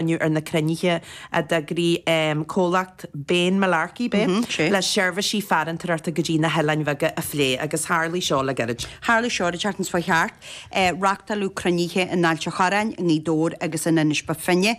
inniu ar na cruinnithe a d'eagraigh comhlacht Bane Mullarkey Bay le seirbhísí farantóireachta go dtí na hoileáin bheaga a phlé agus tharla seo le gairid. Tharla seo ar an tseachtain seo thart, reáchtáladh cruinnithe in Ailt a' Chorráin, i nGaoth Dobhair agus in Inis Bó Finne.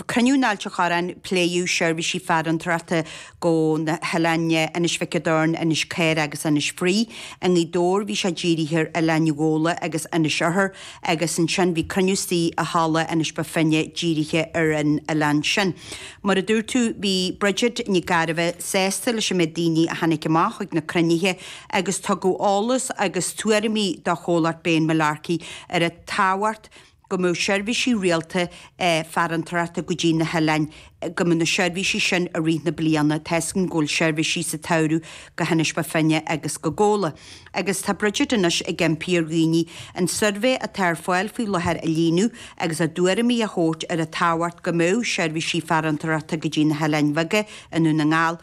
Cruinniú in Ailt a' Chorráin, pléadh seirbhísí farantóireachta go hoileáin Inis Mhic an Doirn, Inis Caorach agus Inis Fraoigh. I nGaoth Dobhair bhí sé dírithe ar Oileán Ghabhla agus Inis Oirthear agus ansin bhí cruinniú istigh i Halla Inis Bó Finne dírithe ar an oileán sin. Mar a dúirt tú bhí Bridget Nic Gairbheith sásta leis an méid daoine a tháinig amach chuig na cruinnithe agus tugadh eolas agus tuairimí do Chomhlacht Bane Mullarkey ar an tábhacht a go mbeadh seirbhísí rialta farantóireachta go dtí na hoileáin, go mbeadh na seirbhísí sin i rith na bliana, tá a fhios againn go bhfuil seirbhísí sa tsamhradh go hInis Bó Finne agus go Gabhla. Agus tá Bridget anois ag impí ar dhaoine an suirbhé atá ar fáil faoi láthair a líonadh agus a dtuairimí a thabhairt ar an tábhacht go mbeadh seirbhísí farantóireachta go dtí na hoileáin bheaga i nDún na nGall,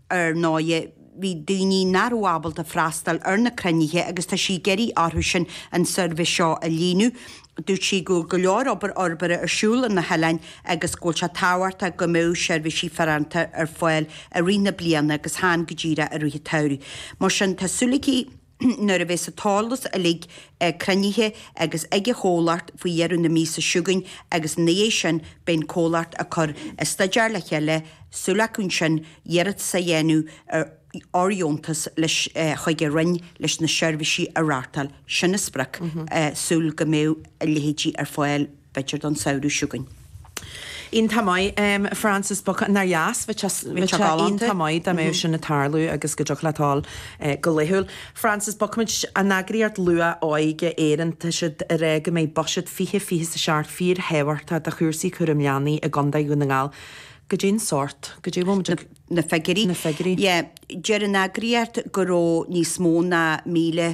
Ar ndóigh, bhí daoine nach raibh ábalta freastal ar na cruinnithe agus tá sí ag iarraidh orthusan an suirbhé seo a líonadh. Dúirt sí go bhfuil go leor obair fhorbartha ar siúl ar na hoileáin agus go bhfuil sé tábhachtach go mbeadh seirbhísí farantóireachta ar fáil i rith na bliana agus chan go díreach i rith an tsamhraidh. Mar sin, tá súil aici, Nuair a bheas an t-eolas uilig cruinnithe agus ag an chomhlacht faoi dheireadh na míosa seo chugainn agus ina dhiaidh sin beidh an comhlacht ag cur an staidéar le chéile, súil acu ansin iarratas a dhéanamh ar fhóirdheontas leis chuig an Roinn leis na seirbhísí a reáchtáil. Sin an sprioc, súil go mbeidh a leithéidí ar fáil. b'fhéidir don samhradh chugainn. Iontach maith, Frances, nár dheas. Bhí sé galánta. Iontach maith. Dá mbeadh sin ag tarlú, agus go dtiocfadh leat a dhul go laethúil. Frances, bogfaimid. An Eagraíocht Luath-Óige Éireann, tá siad ag rá go mbeidh buiséad fiche, fiche is a seacht fíor thábhachtach do chúrsaí cúram leanaí i gContae Dhún na nGall. Goidé an sórt. Goidé a bhfuil muid ag. Na figiúirí. Na figiúirí. Yeah. Deir an eagraíocht go raibh níos mó ná míle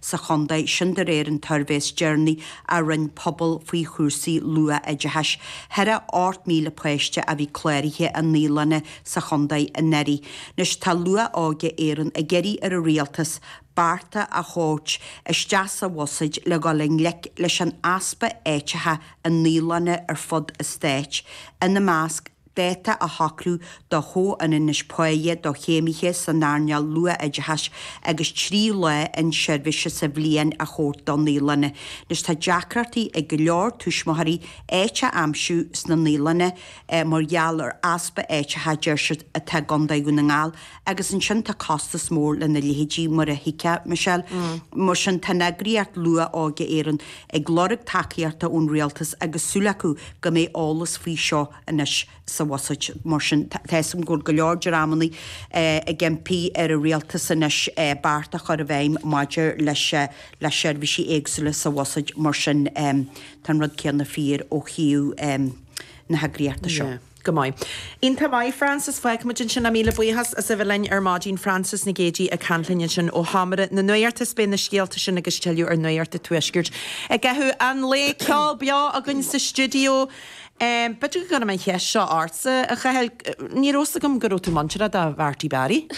sa chontae sin de réir an tsuirbhé is deireanaí a rinne Pobal faoi chúrsaí luath-oideachais. Thaire 8,000 páiste a bhí cláraithe i naíolanna sa chontae anuraidh. Anois tá Luath-Óige Éireann ag iarraidh ar an Rialtas bearta a thabhairt isteach sa Bhuiséad le dhul i ngleic leis an easpa áiteacha i naíolanna ar fud an Stáit, ina measc, dáta a shocrú do chomhionannas páighe do chéimithe san earnáil luath-oideachais agus trí lá inseirbhíse sa bhliain a thabhairt do naíolanna, anois tá deacrachtaí ag go leor tuismitheoirí áit a aimsiú sna naíolanna mar gheall ar easpa áiteacha, a deir siad, atá i gCondae Dhún na nGall. Agus ansin tá costas mór lena leithéidí, mar a thuigfeá, Michelle. Mar sin, tá an eagraíocht Luath-Óige Éireann ag lorg tacaíochta ón rialtas agus súil acu go mbeidh eolas faoi seo anois sa bhuiséad. Mar sin, tá a fhios agam go bhfuil go leor dreamanna ag impí ar an rialtas anois beart a chur i bhfeidhm maidir le seirbhísí éagsúla sa bhuiséad. Mar sin, tá an rud céanna fíor ó thaobh na heagraíochta seo. Go maith. Iontach maith, Frances. Fágfaimid ansin é, míle buíochas as a bheith linn ar maidin. Frances Nic Géadaigh ag caint linn ansin ó sheomra na nuachta is beidh na scéalta sin agus tuilleadh ar Nuacht an Tuaiscirt i gcaitheamh an lae. Ceol beo againn sa stiúideo. B'fhéidir go gcuirfinn an cheist seo ortsa, a Chathail, ní rabh's agam go raibh tú muinteartha do Marty Barry.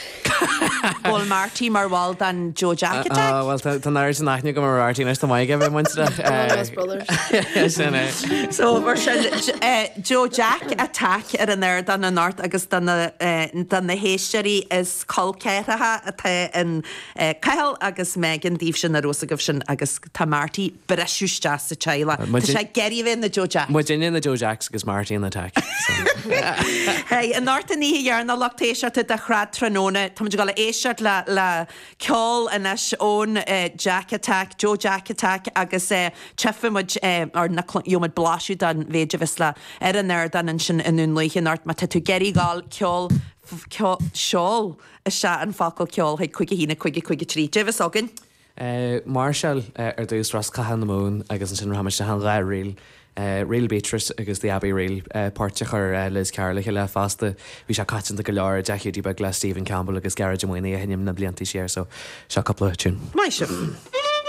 Bhfuil Marty mar bhall den Joe Jack Attack. Á, bhuel, tá an oiread sin aithne agam ar Marty anois, tá mé chóir a bheith muintearach. Brothers, brothers. Sin é. So, mar sin, Joe Jack Attack ar an ardán anocht agus do na héisteoirí is colceathracha atá in Cathal agus Megan daoibhse nach raibh a fhios agaibh sin, agus tá Marty. briseadh isteach sa teaghlach. Tá sé ag iarraidh a bheith ina Joe Jacks. Muidinne na Joe Jacks agus Marty an Attack. I ndortadh an oíche dhearna lucht éisteachta de shraith tráthnóna. Táimid ag dul a éisteacht le le ceol anois ón Jack Attack, Joe Jack Attack agus tiocfaimid ar, nó gheobhaimid blaiseadh den mhéid a bheas le ar an ardán ansin i nDún Lúiche anocht. Má tá tú ag iarraidh gabháil, ceol, ceol, seol isteach an focal 'ceol' chuig 51553. Caidé a bheas againn. máirseáil ar dtús Rosc Catha na Mumhan agus ansin rachaimid isteach in dhá ríl, Ríl Beatrice agus The Abbey Reel, poirt a chuir Liz Carroll le chéile fosta. Bhí sé coitianta go leor i dTeach Hiúdaí Beag le Stephen Campbell agus Gearóid Ó Maonaigh a sheinm na blianta siar so seo cúpla tiún. Maith sibh!